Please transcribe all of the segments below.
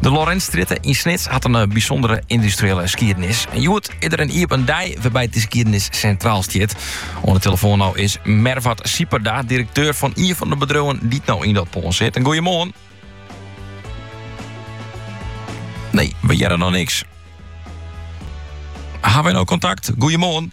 De Lorentzstrjitte yn Snits hat in bysûndere yndustriële skiednis. En hjoed is der in iepen dei wêrby't dy skiednis sintraal stiet. Oan de telefoan no is Mervat Sieperda, direkteur fan ien fan de bedriuwen dy't no yn dat pân sitte. Goeiemoarn. Nee, we hearre noch niks. Hawwe wy no kontakt? Goeiemoarn.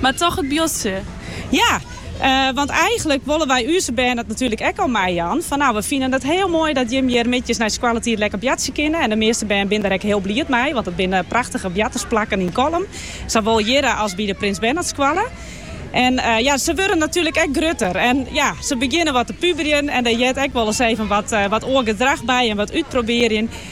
Mar toch it buordsje? Ja, want eigenlik wolle wy úze bern dat natuerlik ek al meijaan. Fan nou, we fine it hiel moai dat jim hjir middeis nei skoalletiid lekker boartsje kinne. En de measte bern binne der ek hiel bliid mei, want it binne prachtige boartersplakken yn Kollum, sawol hjirre as by de Prins Bernhardskoalle. En ja, se wurde natuerlik ek grutter en ja, se begjinne wat te puberjen en dêr heart ek wolris even wat oar gedrach by en wat útprobearjen.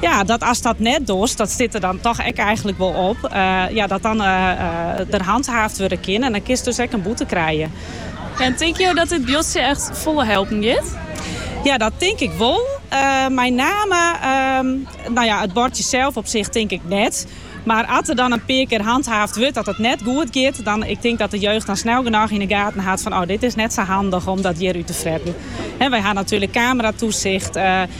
Ja, dat ast dat net dochst, dat stiet der dan toch ek eigenlik wol op, ja, dat dan der hanthaafd wurde kin en dan kinst dus ek in boete krije. En tinke jo dat dit buordsje echt folle helpen giet? Ja, dat tink ik wol. Mei name, nou ja, it buordsje sels op sich tink ik net. Mar as der dan in pear kear hanthaafd wurdt dat it net goed giet, dan, ik tink dat de jeugd dan snel genôch yn de gaten hat fan, oh, dit is net sa handich om dat hjir út te fretten. Wy ha natuerlik kameratoesicht.